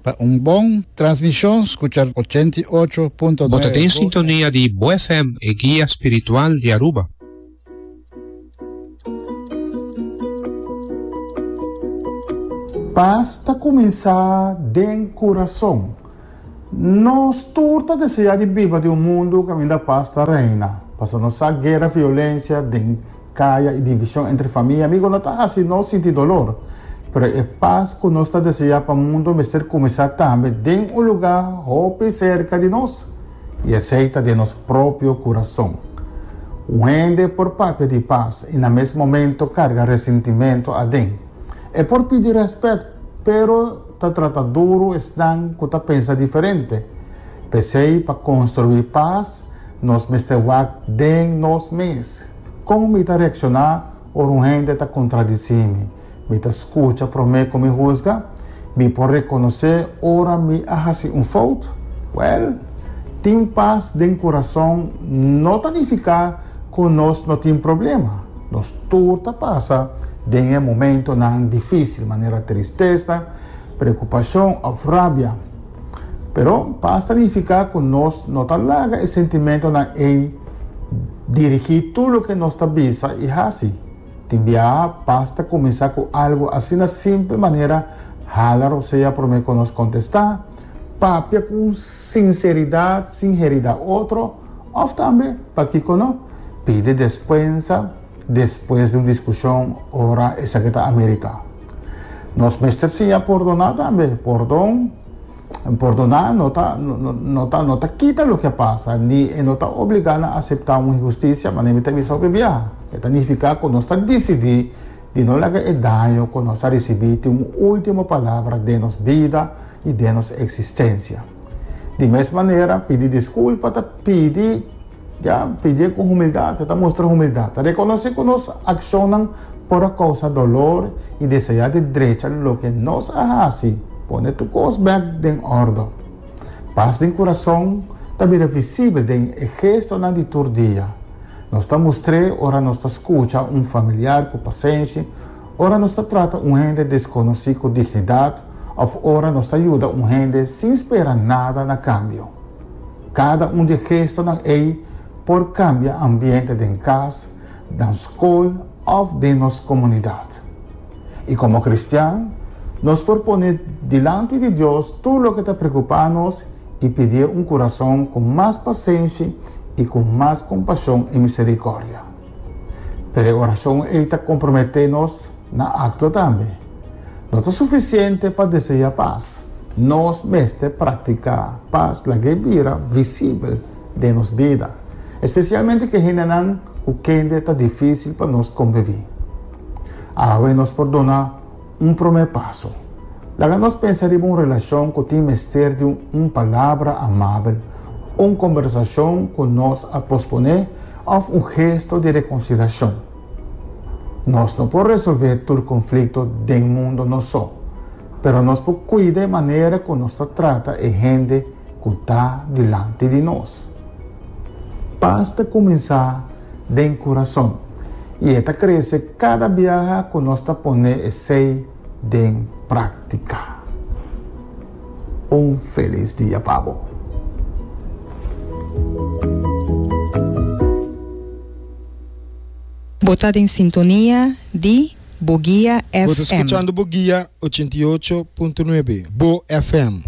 Pa un bon transmishon skucha ochenta i ocho punto Bo ta den nueve Go sintonia di Bo FM, e guia spiritual di Aruba. Pas ta kuminsá den kurason. Nos tur ta deseá di biba den un mundu kaminda pas ta reina, pasobra nos sa guera, violensia den kaya i divishon entre famia i amigu no ta hasi nos sinti dolor. Pero e pas ku nos ta deseá pa mundu mester kuminsá tambe den un lugá hopi serka di nos, i esei ta den nos propio kurason. Un hende por papia di pas i na mes momentu karga resintimentu aden. E por pidi rèspèt, pero Ta trata duru esnan ku ta pensa diferente. P'esei, pa konstruí pas, nos mester wak den nos mes. Kon mi ta reakshoná ora un hende ta kontradisí mi? Mi ta skucha promé ku mi husga? Mi por rekonosé ora mi a hasi un fout? Wèl, tin pas den kurason no ta nifiká ku nos no tin problema. Nos tur ta pasa den e momentonan difísil, manera tristesa, preokupashon òf rabia. Pero pas ta nifiká ku nos no ta laga e sentimentonan ei dirigí tur loke nos ta bisa i hasi. Tin biaha, pas ta kuminsá ku algu asina simpel manera hala rosea promé ku nos kontestá. Papia cu un sinceridad sin herida otro, of tambe, pakico no, pidi despensa despues di un discusion ora esaki ta amerita. Nos mester siña pordona tambe. Pordon, pordona no ta, no ta, no ta kita loke a pasa, ni e no ta obliga na acepta un injusticia, manera mi ta bisa hopi bia. E ta nifica cu nos ta dicidi di no laga e daño ku nos a risibí tin un último palabra den nos bida i den nos eksistensia. Di mes manera, pidi diskulpa ta pidi, ya, pidi ku humildat, ta mustra humildat, ta rekonosé ku nos akshonnan por a kousa dolor i deseá di drecha loke nos a hasi, pone tur kos bèk den òrdu. Pas den kurason ta bira visibel den e gestonan di tur dia. Nos ta mustr'é ora nos ta skucha un familiar ku pasenshi, ora nos ta trata un hende deskonosí ku dignidat òf ora nos ta yuda un hende sin spera nada na kambio. Kada un di e gestonan ei por kambia ambiente den kas, nan skol òf den nos komunidat. I komo kristian, nos por pone dilanti di Dios tur loke ta preokupá nos i pidié un kurason ku mas pasenshi i ku mas kompashon i miserikòrdia. Pero e orashon ei ta komprometé nos na aktua tambe. No ta sufisiente pa deseá pas, nos mester praktiká pas lag'é bira visibel den nos bida, espesialmente ku e hendenan ku kende ta difísil pa nos kombiví. Awe nos por duna. Un promé paso. Laga nos pensa riba un relashon ku tin mester di un palabra amabel, un kombersashon ku nos a posponé òf un gesto di rekonsilashon. Nos no por resolvé tur konflikto den mundo nos so, pero nos por kuida e manera ku nos ta trata e hende ku ta dilanti di nos. Pas ta kuminsá den kurason. i e ta krese kada biaha ku nos ta pone esei den práktika. Un felis dia pa bo! Bo ta den sintonia di Bo Guia FM. Bo ta skuchando Bo Guia ochenta i ocho punto nuebe, Bo FM.